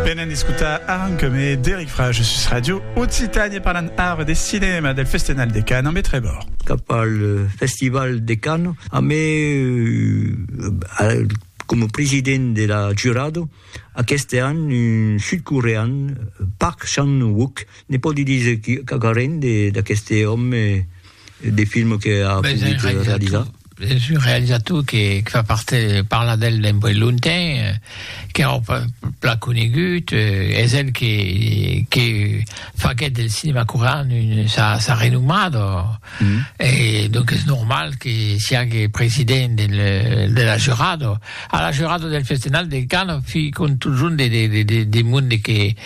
Venèn escotar Aran que me d'Eric Frage sus Radio Occitània parlant ara de cinèma del Festenal de Cannes ambe Trevor. Cap al Festival de Cannes ambe coma president de la jurado aqueste an un sud-corean Park Chan-wook ne pòdi díser quauquarren d'aqueste òme de films que a ben, pogut un realizar? Es un realizator que, que fa parte, parla d'el d'un boi lontain, qu'èra pas plan conegut, es el que, que faguèt del cinema corean un, sa, sa renomat, o, e donc es normal que siague president del, de la jurada. A la jorada del Festenal de Can fi contujon de de de de de monde que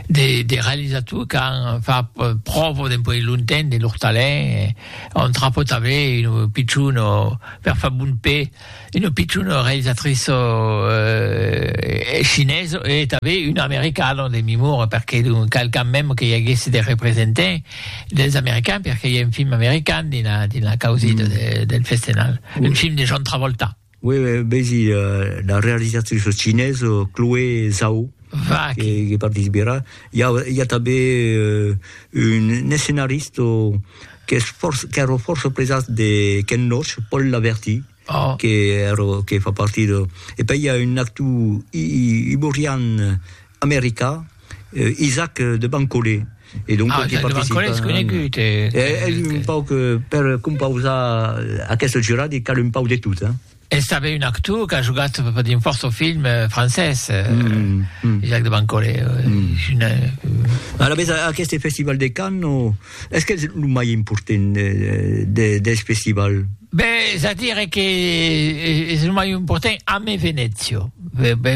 de de realisator qu'an fa pròvo dempuèi lonten de lor talent on tra pot aver ino pichon o per fa bon pè ino pichon o realisatrice o eh chinèse e tanbè un americano de memora perqué donc qualqu'an mèm que i aguèsse de representant dels americans perqué i a un film american dins la dins la causida de del Festenal un film de John Travolta. Uè, vesi la realizatrice cinesa Chloé Zhao, Va, que, que, que participerà. Hi ha, hi ha també uh, un, un escenarista que és força, que era força presat de Ken Loach, Paul Laverty, oh. que, era, que fa partir de... E poi hi ha un actor iborian americà, Eh, Isaac de Bancolé. E donc, ah, Isaac de Bancolé és conegut. Eh, eh, eh, un pauc, eh, per compausar aquest jurat, i cal un pauc de tot, eh? És també un actor que ha jugat dins força film eh, francès, eh, mm, mm. Jacques de Bancolé. Eh, mm. Una... A la vez, aquest festival de Cannes, o... Es que es lo mai important de, dels festival? Ben, es a dire que es lo mai important ame Venezio,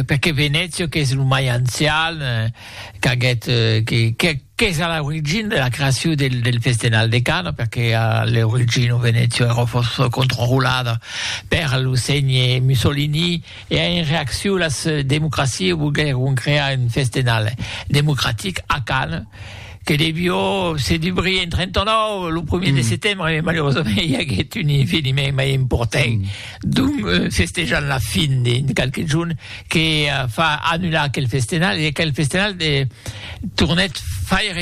perque Venezio qu'es lo mai ancian, qu'aguèt, que qu'es a l'origina de la creacion del del festenal de Cana, perque a l'origina Venezio èra fòrça controlada per lo ségne Mussolini e en reaccion las democracias volguèron crear un festenal democratic a Cana, Que devió se dubrir en 39, lo primièr de setembre, e malerosament i aguèt un eveniment mai important, donc festejant la fin de qualques jorns, que fa annular aquel festenal, e aquel festenal tornèt faire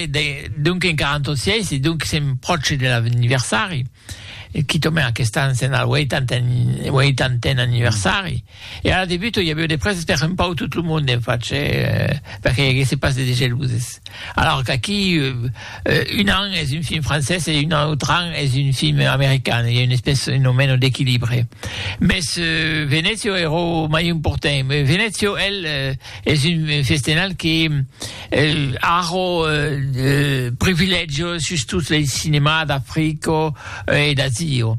donc en 46, e donc sèm pròche de l'anniversari, quitament aqueste an sèm al 80èn anniversari. E ara debuto, i avió de prèses per un pauc tot lo monde en fach, per que i aguèsse pas de degeluses. Alòr qu'aquí, un an es un film francés e un autre an es un film american, i a una espèce un o meno d'equilibre. Mès Venezio ero mai important. Venezio, el, es un festenal que a ro privilègio sus tot lo cinemà d'Africo e d'Azio.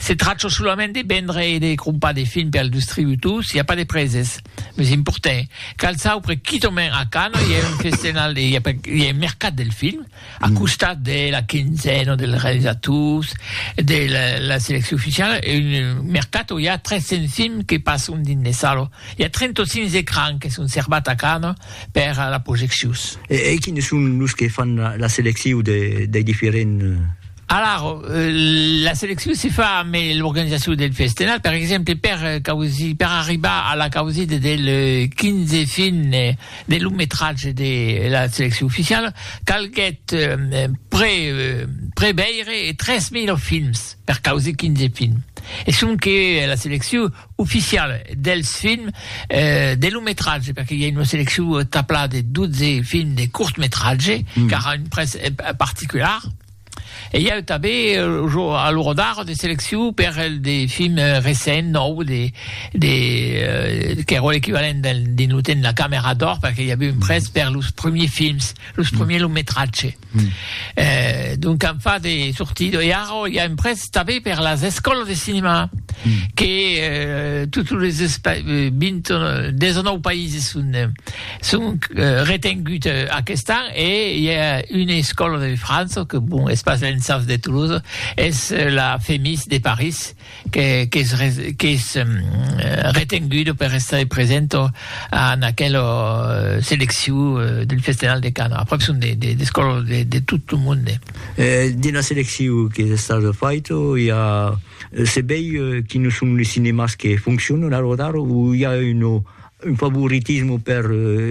Se trachò solament de vendre e de crompar de film per al dustributor, s'i a pas de preses. Meus importè, cal saupre quitament a Cannes i a un festenal de, i a per, i a un mercat del film, a costat de la quinzena dels realisators, de la, la seleccion oficiala, e un mercat o i a 300 films que passon dins les salas. I a 35 ecrans que son servats a Cannes per a la projeccions. E, e quines son los que fan la, la seleccion de, dei diferents. Alara, la seleccion se fa ambe l'organizacion del festenal, per exemple per causir, per arribar a la causida del 15 fin de long metratge de la seleccion oficiala, calguèt pre preveire 3000 films per causir 15 films. E sonque la seleccion oficiala dels films de long metratge, perque i a una seleccion taplada de 12 films de cort metratge, qu'ara un prètz particular. E i a eu tanben lo jo a lo Rodar de seleccion per el de film recent nòu de de qu'èra l'equivalent del dins lo temps de la camera d'or perque i a eu un prèst per los premiers films, los premiers long metratge. Donc an fat de sortir e ara i a un prèst tanben per las escòlas de cinema que totes los 20 19 païses son Sonc retengut aquest an e i a una escòla de França que bon es pas l'ENSAF de Toulouse, es la FEMIS de París qu'es retenguda per estar presenta en aquela seleccion del Festenal de Canes. Aprèp son de d'escòlas de tot lo monde. Dins la seleccion qu'es estada faita i a se veir quines son los cinemas que foncionan a l'ora d'ara o i a una Un favoritisme per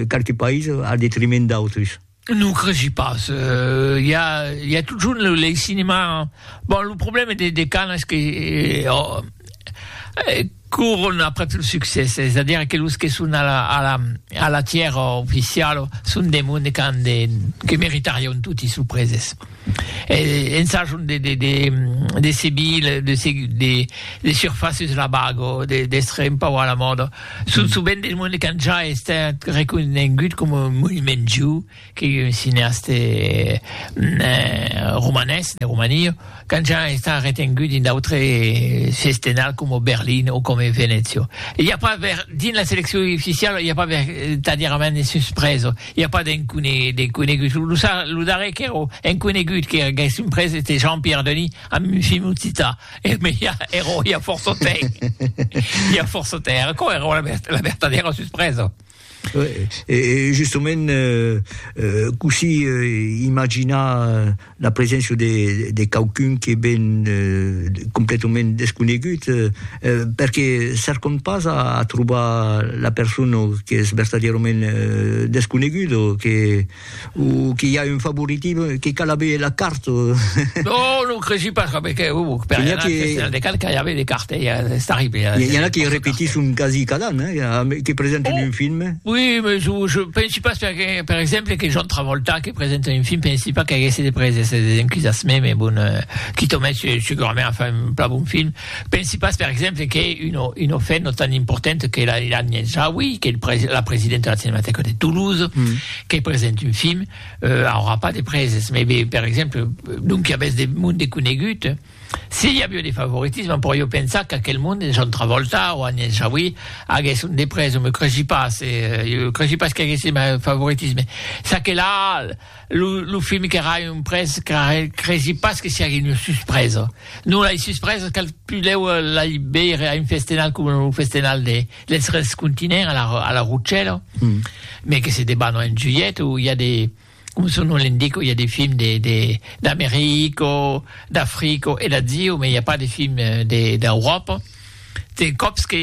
qualques païses al detriment d'autres? Non cresi pas, i a i a totjorn lo lei cinema, bon lo problème de de Cannes es que coron après lo succès, es a dire que los que son a la a la a la tièra oficiala son de monde qu'an de que meritarion toti sorpreses. Ensajant de seguir de surfaces la bago, d'èstre un pauc a la mòda. Son sovent de monde qu'an ja estat reconegut coma un monument viu, que un cineaste romanés, de Romania, qu'an ja estat retengut dins d'autre sestenal coma Berlin o coma Venècia. I a pas dins la seleccion oficiala i a pas vertadièrament de suspresa. I a pas d'enconegut. Lo darrèr qu'èra enconegut qu'èra gaissent pres ète Jean-Pierre Denis amb un film occitan. E me i a ero i a fòrça temps. I a fòrça temps. Era aquò ero la vertadèra suspresa. E justament cossí imaginar la preséncia de, de quauqu'un que ven completament desconegut, perque cercam pas a, a trobar la persona qu'es vertadièrament desconeguda, que, o qu'i a un favoritisme, que cal aver la carta. Non, non cresi pas, coma que, o, per anar al Festival de Cannes cal aver de carta, e ja es arribé a. I a n'a que repetisson quasi cada an, hein, que presenten un film. Oui, mais je, je pensi pas, perque, per exemple, que John Travolta, Se presenta un film, pensi pas qu'aguèsse de preses e de encusas, me me bon, quito o mètge segurament a far un plan bon film, pensi pas per exemple que un o un o fèt no tan important que la Ilan Yenchawi, que el pre la presidenta de la Cinematèca de Toulouse, que presente un film, aurà pas de preses, me be per exemple, donc i a bèth de monde conegut, Si i avió de favoritisme, però jo pensar qu'aquel monde de John Travolta o Agnès Jaoui aguèsse un de pres, o me creshi pas, jo creshi pas qu'aguèsse mai favoritisme. Ça que la, lo, lo film qu'èra un pres, creshi pas que siague un suspresa. Non, lai suspresas cal pudèu lai veire a un festenal coma lo festenal de dels tres continents a la, a la Rochelha, mai que se debanò en julhet o i a de, Coma son nom l'indica, i a de films d'America, d'Africa e d'Asia, mas i a pas de films d'Euròpa. Te còps que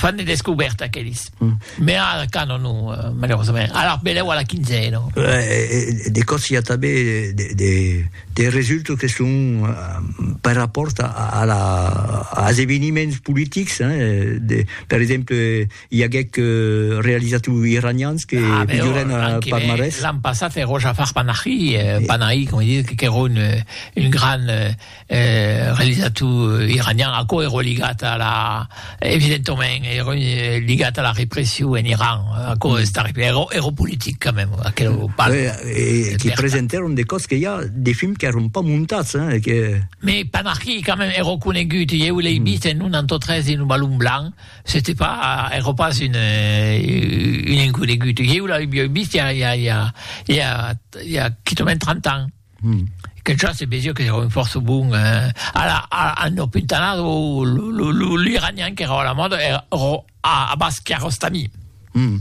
fan de descobèrta aqueles. Mès ara Cannes non, malerosament. Alara benlèu a la quinzena. De còps i a tanben de resultats que son per rapòrt als eveniments politics, per exemple, I aguèc realizat lo iranians que milhorèn a Parmarès. L'an passat ero Jafar Panahi, Panahi com dit, qu'ero un gran realizator iranian, aquò ero ligat a la evidentament ero ligat a la repression en Iran, aquò es terrible, ero ero politic quand même aquelo part. E que presentèron de còps que i a de films qu'èron pas montats hein que. Mei Panahi quand même ero conegut, ieu l'ei vist en un antautre dins lo Balon Blanc, C'était pas ère pas une une inconegut. Ieu la ui ui vist ja ja ja ja ja quitament 30 ans. Hum. Que ja se vesia que ère un fòrça bon eh a la a a no puntanat o lo lo lo l'iranian qu'ère a la mòda ère ro a a bas Kiarostami. Hum.